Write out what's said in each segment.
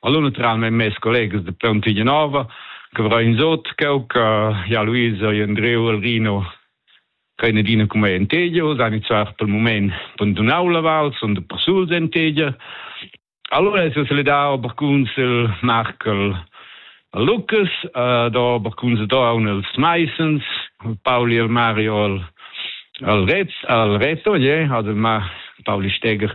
Allora naturalmente mes collegas de Pontignanova, che avrà in sot, che ja Luisa e Andreo Alrino che in adina come in tegia, san iniziar per il moment abbandonau la val, sono de passul in tegia. Allora si è dato barcuns il Markel Lucas, uh, do barcuns do un els Meisens, Pauli el Mario al al Retz, al Reto, je, also ma Pauli Steger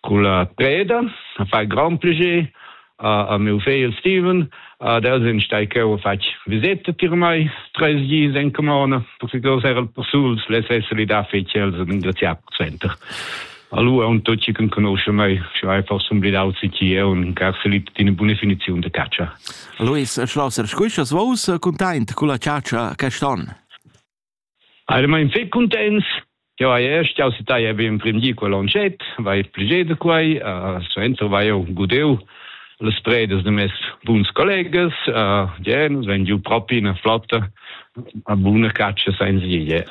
Culla preda a far grand plascher a, a miu fegl Steven. Ad els ein stai cheu fatg viseta tier mei treis dis en camona, perché els eran persuls, les essere da fetg els ein engraziar per center. Allora un tucci che conosce me, cioè forse un blidau sicchi e un carselip di una buona definizione di caccia. Luis Schlosser, scuiscias vos content con la caccia quest'anno? Eiramaing fich cuntents ch'eu haja stu sità be in prim di quel lantschet, vai pledgé da quai, suenter vai eu gudeu las predas da meis buns collegas, ie nus vain giù propi üna flotta a buna catscha sainza vieglier.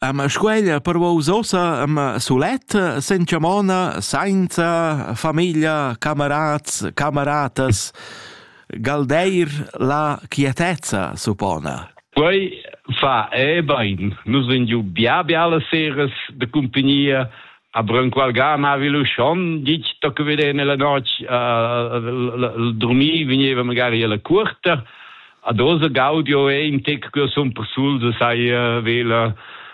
Ma squeglia per vos ossa am sulet, senza mona, sainza famiglia, camerats, cameratas. galdeir la quietezza, suppona? Quei fa e bein. Nus vegn giu bia bialas seras de cumpagnia, a Branqualgana havi lu schon ditg tocca veder nella notg uh, dormir vegneva magari alla curta ad osa gaudio e im tec che sun persul se sai uh, vela